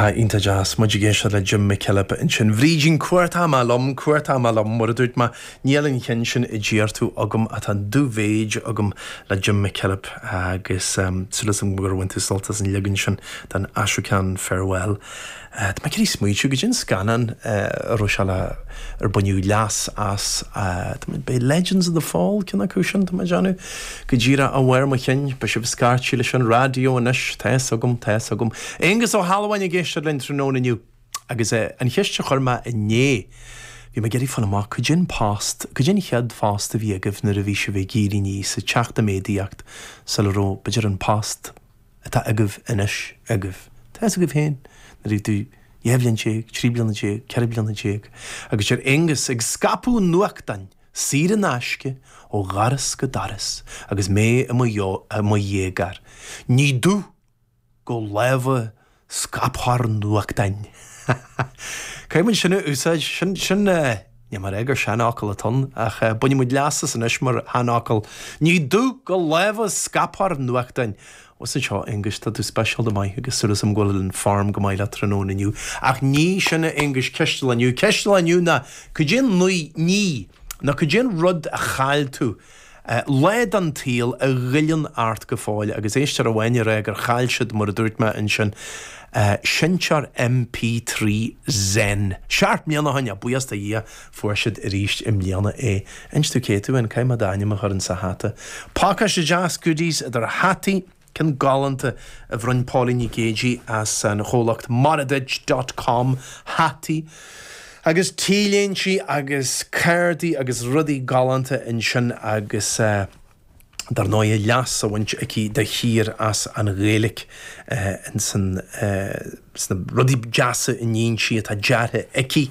Tá, iontach deas. Muid ag éisteacht le Jim McKillop ansin. Bhrídín, chuartaigh mé liom, chuartaigh mé liom, mar a dúirt mé. Níl an ceann sin a d'iarr tú agam ach tá an dubh-mhéid agam le Jim McKillop agus súil asam gur bhain tú sult as an leagan sin den Ashokan Farewell. Tá mé ag iarraidh smaointiú cad é an scannán a raibh sé le, ar baineadh leas as, b'é Legends of the Fall ceann acu sin, tá mé ag déanamh. Go díreach ó bharr mo chinn. Beidh sibh ag scairtigh leis an raidió anois, tá fhios agam, tá fhios agam. Aonghus Ó hAlmháin ag éisteacht linn tráthnóna inniu. Agus an cheist a chuir mé inné, bhí mé ag iarraidh fáil amach, cad é an post, cad é an chéad phost a bhí agaibh nuair a bhí sibh ag éirí aníos, ag teacht i méadaíocht, sula raibh, b'fhéidir, an post. atá agaibh anois agaibh. Tá fhios agaibh féin, nuair a bhí tú dhá bhliain déag, trí bliana déag, ceithre bliana déag, agus deir Aonghus ag scaipeadh nuachtáin saor in aisce ó dhoras go doras agus mé i mo dhéagóir, ní dubh go lámha Scaiptheoir nuachtáin. Caithfidh muid sin a úsáid. Sin, sin eh, níl mé a rá gur seanfhocal atá ann, ach eh, bainfidh muid leas as anois mar sheanfhocal, Ní dubh go lámha scaiptheoir nuachtáin! Os a seo, Aonghus, tá tú speisialta maith agus súil asam go bhfuil an form go maith leat tráthnóna inniu. Ach ní sin a Aonghus ceist an lae inniu. Ceist an lae inniu ná, cad é an ní, nó cad é an rud a chaill tú, Lá den tsaol a ghoilleann ort go fóill, agus éisteoir amháin ag rá gur chaill siad, mar a dúirt mé ansin, seinnteoir MP3 Zen. Seacht mbliana ó shin, a bhuíochas do Dhia, fuair siad arís i mbliana é. Inis domh cé tú, nó caithfidh mé d'ainm a chur insa hata. Pácáiste deas goodies idir hataí, Ceann galánta a bhronn Pauline Nic Géidigh as an chomhlacht Moraduit dot com, hataí agus t-léintí agus cárdaí agus rudaí galánta ansin agus dar ndóigh leas á bhaint aici de shíor as an Ghaeilge in sna rudaí deasa a níonn sí atá deartha aici